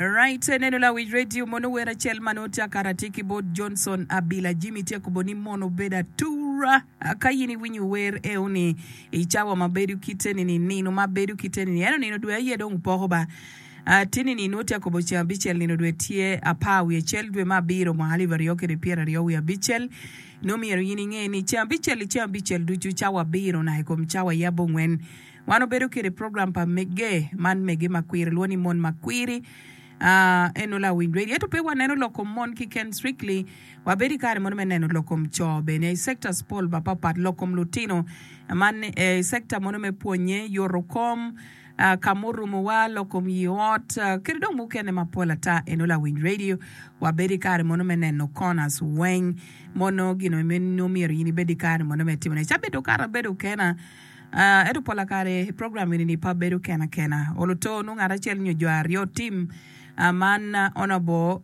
Right, neno lawic radio mono wer acel ma nongo tye akato atir ki bot Johnson Abila. Jimmy tye kobo ni mono obedo atura. Ah, Ka in iwinyo wer eo-ni i cawa ma bedo kite ni ni, nino ma bedo kite ni ni, ento nino dwe aye dong poko ba. Ah, Tini ni nongo tye akobo ceng abicel nino dwe tye apar wiye cel dwe me abiro mwaka alip aryo kede pyera aryo wiye abicel. Nongo myero in inge ni ceng abicel-li ceng abicel ducu cawa abiro naka i kom cawa yabo ngwen. Wan obedo kede program pa Megge man Megge ma kwiri lwo ni Mon ma Kwiri. Eno lawiny radio ento pe waneno lok kom mon kiken strictly. Wabedo i kare mono me neno lok kom co bene i sectors pol mapapat lok kom lutino man i sector mono me pwonye yoto kom ka murumo wa lok kom yi ot kede dong mukene mapol ata. Eno lawiny radio wabedo i kare mono me neno corners weng mono gin omyero in ibed i kare mono me timone. Cabit okato abedo kena. Ento pola kare i program eni-ni pe abedo kena kena. Olo to nongo ngat acel nyo jo aryo tim. Man Honourable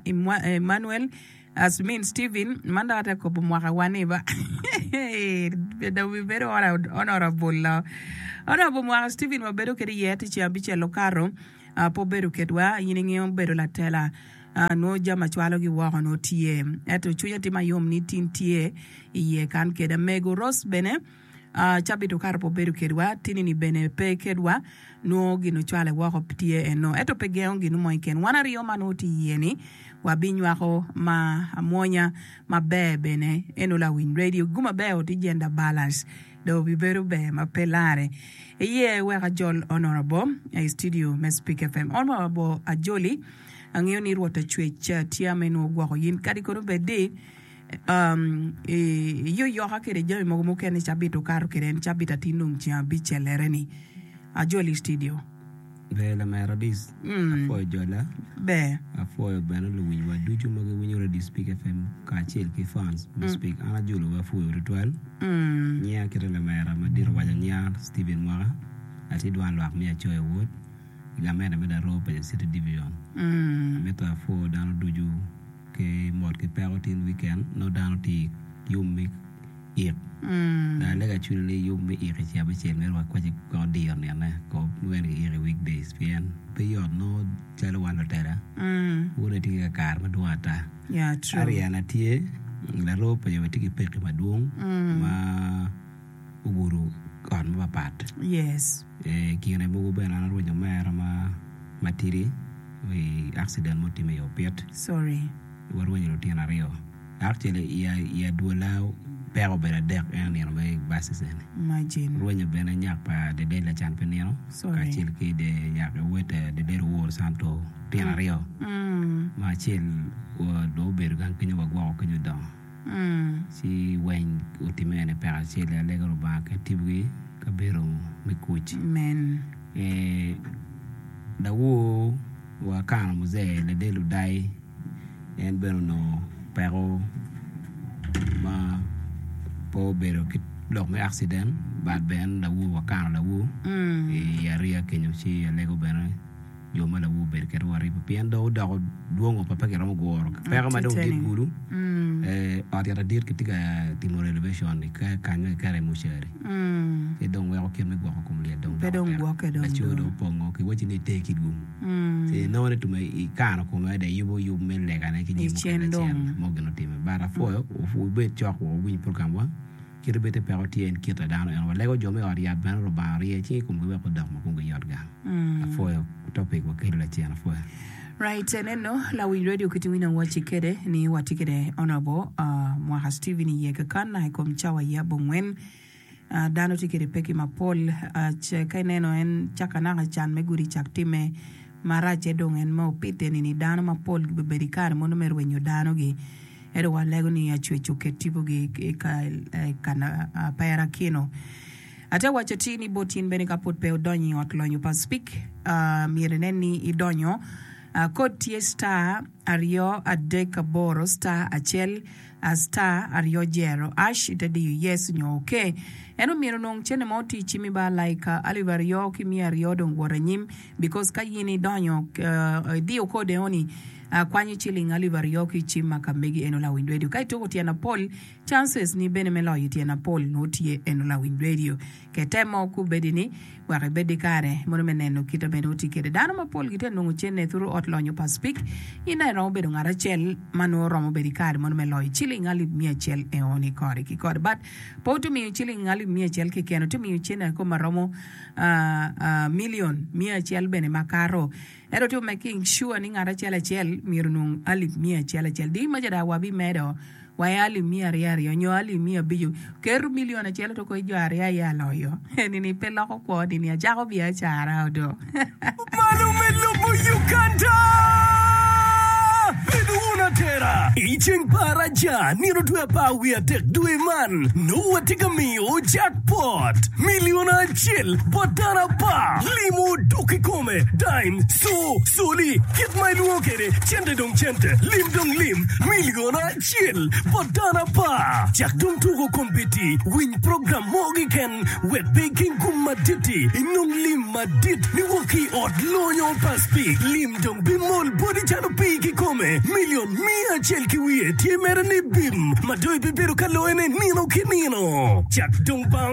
Emmanuel Asmin Steven man dok atye ka kobo mwaka wa ni ba pe dong bibedo Honourable-lo. Honourable mwaka Steven wabedo kwede iye ticeng abicel okato. a pe obedo kedwa in ingeyo bedo latela a nongo jami ma cwalo gi woko nongo tye ento cwinya tye mayom ni tin tye iye kan keda mego Rose bene a cabit okato pe obedo kedwa tini ni bene pe kedwa nongo gin ocwale woko tye eno ento pe gengo gin mo keken wan aryo ma nongo tye iye ni wa bi nywako ma amwonya maber bene eno lawiny radio gu maber ti Gender balance dong obibedo ber ma pe larre. Iye wek ajol Honor Abo i studio me Speak FM. Honor Abo ajoli, angeyo ni Rwot Acwec tye ame nongo gwoko yin kadi kono bed ni iyoyoka kede jami mogo mukene cabit okato kede en cabit atir nongo ceng abicellere ni. Ajoli i studio. Ber lamera Adis, apwoyo jola. Ber. Apwoyo bene luwicwa ducu ma giwinyo Radio Speak FM kacel ki fans me mm. Speak. An ajulowa apwoyo tutwal. Mm. Nyinga kite lamera madit owaco nyinga Stephen Mwaka. Atye dwan lwak me Acoya Ward. Gamente me Darowo Paja City Division. Mm. Amito apwoyo dano ducu ki mot ki peko tin wiken no dano tye yom me Ik. Daa lega cwinyi ni yub me ik i Cabichel myero wakwaci gwoko diyo nino kop ma wene giiko i weekdays pien pe yot nongo calo wan lutela wune tye ki kakare madwong ata. Ariana tye laroo pa jo ma tye ki pekki madwong ma ogudo ot mapapat. I kine mogo bene an arwenyo omera ma matidi i akciden ma otimme i opit. Warwenyo lutino aryo. Actually, i adwola peko obedo adek en onino mere i basis eni. Rwenyo bene nyak pa Dedel Lacan pe nino kacel ki wode Dedel Owor Santo lutino aryo ma acel dong obedo gang kenyo wagwoko kenyo odongo. Ci weng otime ene peko acel i alega Lubanga kit timgi ka bedo me kuc. Lawowa Akana Muze ladit Ludai en bene onongo peko ma pe obedo ki lok me accident but bene lawowa Akana lawo i ariya kenyo ci alego bene Jo ma lawu obedo kit waripo pien dong odoko dwong o pe giromo guro peko ma dong dit kulu. Ot yat adit kitye ka timo renovation ni ka kanyo kiketo iye mucari ci dong weko kit me gwoko kom lyel dong doko tek laco dong opongo ki wacci ni ite ki dwong ci inongo ni tum aye ikano kome adada iyubo yub me legane ki jami mukene acel mo gin otime but apwoyo wubed cok wa wuwiny program wa. Kit obed ni peko tye en kit a dano ento walego jo me ot yat bene Lubanga orye cing i komgi wek odok ma komgi yot gang. Apwoyo topic wa kelo lacen apwoyo. Right eneno lawiny radio kit winy a waci kede ni watye kede honourable mwaka Steven i ye kakan i kom cawa ye abongwen dano tye kede peki mapol ce ka ineno en caka naka can me gudi cak time marac ce dong en me opite nini dano mapol gibebedo i kare mono me rwenyo dano gi Ento walego ni acwec oket tipogi i kan aperakino. Ate waco ti ni bot in bene ka pud pe odonyo i ot lonyo pa Speke, myero inen ni idonyo. Kod tye star aryo adek aboro star acel star aryo jero ash ite diyo yes nyo ok. En omyero onong cene mo ti cimi ba alaika alip aryo ki miya aryo dong wot anyim because ka in idonyo idiyo code eno ni. Akwanyo ciling alip aryo ki cim ma ka megi eno lawiny radio ka ituko tyen apol chances ni bene me loyo tyen apol nwo tye eno lawiny radio kete mo ku bedi ni wek ibed di kare mono me neno kit abene oti kede dano ma pol gitye nongo cene thuru ot lonyo pa spik in aye romo bedo ngat acel ma nwo romo bedi kare mono me loyo ciling alip miya acel eo ni kore ki kore but pe otu miyo ciling alip miya acel keken otu miyo cene aye koma romo a a million miya acel bene ma kato Ento to making sure ni ngat acel acel myero onong alip miya acel acel. Di maca dak wabimedo wa i alip miya aryo aryo nyo alip miya abico. Keto milion acel to koi jo aryo aye aloyo. Eni-ni pe loko kwo ni ni acako biacara odo. Mano me lobo Uganda! Bed wun atera! I ceng pa araca, nino otwe apar wiye adek dwe man, nongo watye ka miyo jackpot, milion acel bot dano apar. Limo dok i kom. kome, dime, co, coli, kit ma ilwongo kwede, cente dong cente, lim dong lim, milion acel bot dano apar. Cak dong tuko kombeddi, winy program mo keken, wek pe iking kum madit-ti, inong lim madit niwok ki i ot lonyo pa Spik. Lim dong bimol boti calo pii kikome, milion miya acel ki wiye tye mere ni bim, ma dong ibibedo ka loyone nino ki nino. Cak dong ba.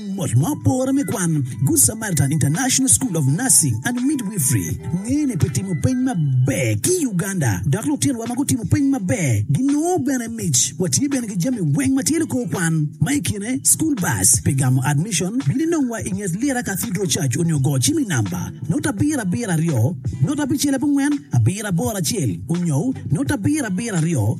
Mot ma opore me kwan, Good Samaritan International School of Nursing and Midwifery ngene pi timo peny maber ki i Uganda, dok lutinowa ma gutimo peny maber ginongo bene mic. Watye bene ki jami weng ma tye likor kwan, ma i kine school bus. Pi gamo admission, bin inongwa i nget Lira Cathedral Church onyo go cim i namba note abiro abiro aryo note abicel abongwen abiro aboro acel onyo note abiro abiro aryo.